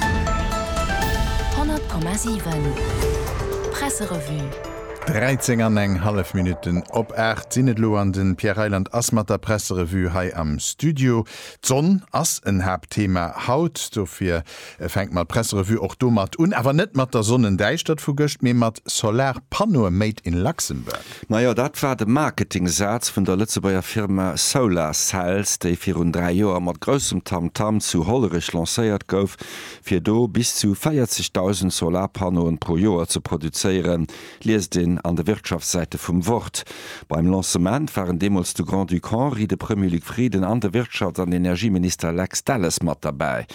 100,7 Presserevue. 13 an eng hallef Minutten op 8 sinn et elo an de Pierre Reyland ass mat der Presserevue hei am Studio. D'Sonn ass en Haaptthema haut, dofir fänkt mer d'Presserevue och domat un, awer net mat der Sonnendäischtert vu gëscht, mee mat Solarpannoe made in Luxembourg. Najo, dat war de Marketingsaz vun der Lëtzebuerger Firma Solar Cells, déi virun 3 Joer mat groussem Tamtam zu Hollerech lancéiert gouf, fir do bis zu 40.000 Solarpannoen pro Joer ze produzéieren, liest een an de Wirtschaftssäite vum Wort. Beim Lancement waren deemools de Grand-Duc Henri, de Premier Luc Frieden an de Wirtschafts an Energieminister Lex Delles mat derbäi.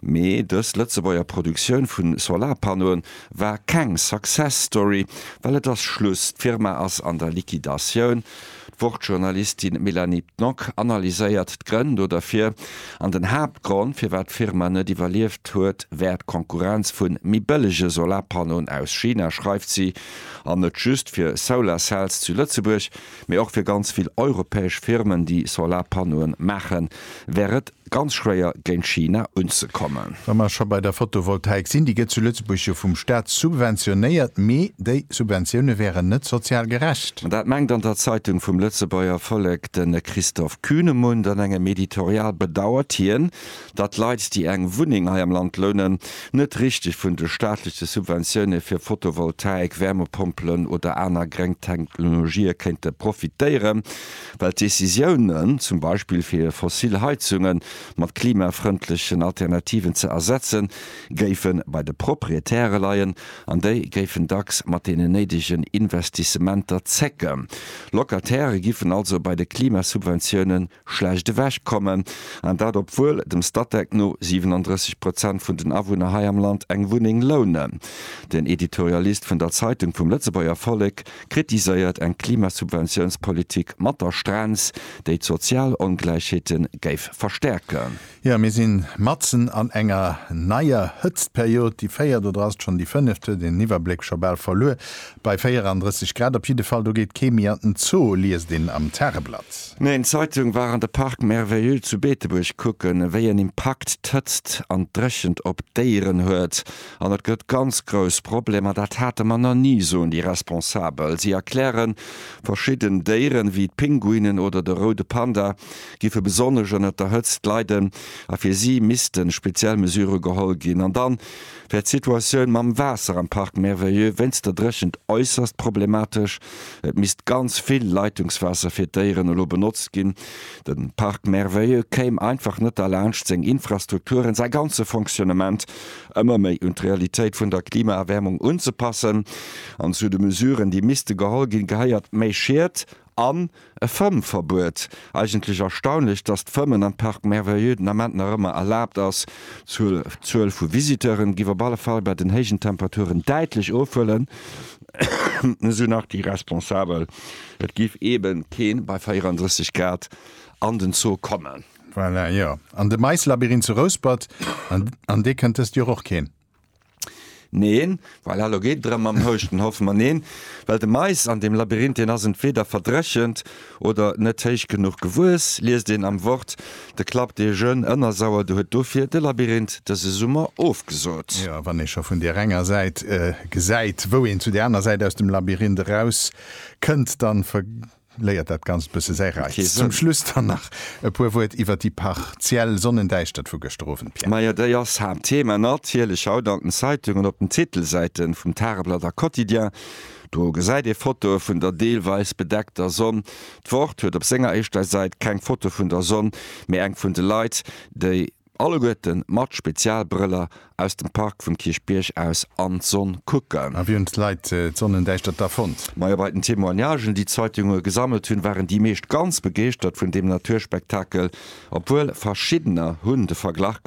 Mee dës Lëtzebuerger Produktioun vu Solarpannoen, War keng Success Story, well et ass Schluss, d'Firma ass an der Liquidatioun. D'Wort-Journalistin Mélanie Pnock analyséiert d'Grënn do derfir, an den Haaptgrond, firwat d'Firma net iwwerlieft huet, wär d'Konkurrenz vu méi bëllege Solarpannoen aus China, schreift si. An net just fir Solar Cells zu Lëtzebuerg. Mee och fir ganz vill europäesch Firmen, déi Solarpannoen maachen, wär et ganz schwéier géint China unzekommen. Wa mer scho bei der Photovoltaik sinn, déi gëtt zu Lëtzebuerg jo vum Staat subventionéiert, mee déi Subventioune wären net sozial gerecht. Dat mengt an der Zeitung vum Lëtzebuerger Vollek de Christoph Kühnemund. An engem Editorial bedauert hien, datt Leit, déi eng Wunneng hei am Land lounen, net richteg vun de staatleche Subventioune fir Photovoltaik, Wärmepompelen oder aner gréng Technologië kéinte profitéieren, well d'Decisiounen, zum Beispill fir fossil Heizunge mat klimafrëndlechen Alternativen ze ersetzen, géife bei de Proprietäre leien an déi géifen dacks mat deenen néidegen Investissementer zécken. Locatairë giffen also bei de Klimasubventioune schlecht ewech kommen, an dat obwuel dem Statec no 37 Prozent vun den Awunner hei am Land eng Wunneng lounen. Den Editorialist vun der Zeitung vum Lëtzebuerger Vollek kritiséiert eng Klimasubventiounspolitik mat der Strenz, déi d'sozial Ongläichheete géif verstäerken. Jo, mir sinn matzen an enger neier Hëtztperiod, déi véiert oder ass et schonn déi fënneft? Huet een den Iwwerbléck scho bal verluer bei 34 Grad? Op jidde Fall, do geet kee méi an den Zoo, liest een am Tageblatt. Meng Zeitung war an de Parc merveilleux zu Beetebuerg kucken, wéi en Impakt d'Hëtzt an d'Dréchent op d'Déieren huet. An et gëtt ganz grouss Problemer, dat hate mer nach ni, soen déi Responsabel. Si erklären, verschidden Déieren, wéi d'Pinguinen oder de roude Panda, giffe besonnesch ënnert der Hëtzt leiden a fir si missten speziell Mesure geholl ginn. An dann wär d'Situatioun mam Waasser am Parc Merveilleux wéinst der Dréchent äusserst problematesch. Et misst ganz vill Leitungswaasser fir d'Déieren elo benotzt ginn. De Parc Merveilleux kéim einfach net derlaanscht, seng Infrastrukturen, säi ganze Fonctionnement ëmmer méi un d'Realitéit vun der Klimaerwäermung unzepassen. An zu de Mesuren, déi misste geholl ginn, gehéiert méi Schied An e Fëmmverbuet. Eigentlech erstaunlech, dass d'Fëmmen am Parc Merveilleux den Ament nach ëmmer erlaabt ass. D'Zuel vu Visiteuren giff op alle Fall bei den héijen Temperaturen däitlech ofhuelen, esou nach déi Responsabel. Et giff eben keen bei 34 Grad an den Zoo kommen. Voilà, jo. An de Maislabyrinth zu Rouspert, an dee kënnt dëst Joer och keen. Neen, well elo geet et erëm mam Houschten, hoffe mer. Neen, well de Mais an deem Labyrinth, deen ass entweeder verdréchent oder net héich genuch gewuess, liest een am Wort. De Club des Jeunes Ënnersauer, de huet dofir de Labyrinth dëse Summer ofgesot. Jo, wann ee scho vun där enger Säit gesäit, wou een zu där aner Säit aus dem Labyrinth eraus kënnt, da. Léiert dat Ganzt bësse säi Reiz. Zum Schluss dann nach e puer Wuert iwwer déi partiell Sonnendäischtert vu gëschter Owend, Pierre. Majo, déi ass Haaptthema natierlech haut an den Zeitungen, op den Titelsäiten vum Tageblatt a Quotidien. Do gesäit ee Fotoe vun der deelweis bedeckter Sonn. D'Wort huet op senger éischter Säit keng Foto vun der Sonn, mee eng vun de Leit, déi. Alleguerten mat Spezialbrëller aus dem Park vum Kierchbierg aus an d'Sonn kucken. A wéi hunn d'Leit d'Sonnendäischtert da fonnt? Majo bei den Témoignagen, déi d'Zeitunge gesammelt hunn, waren déi meescht ganz begeeschtert vun deem Naturspektakel. Obwuel verschiddener hunn de Verglach.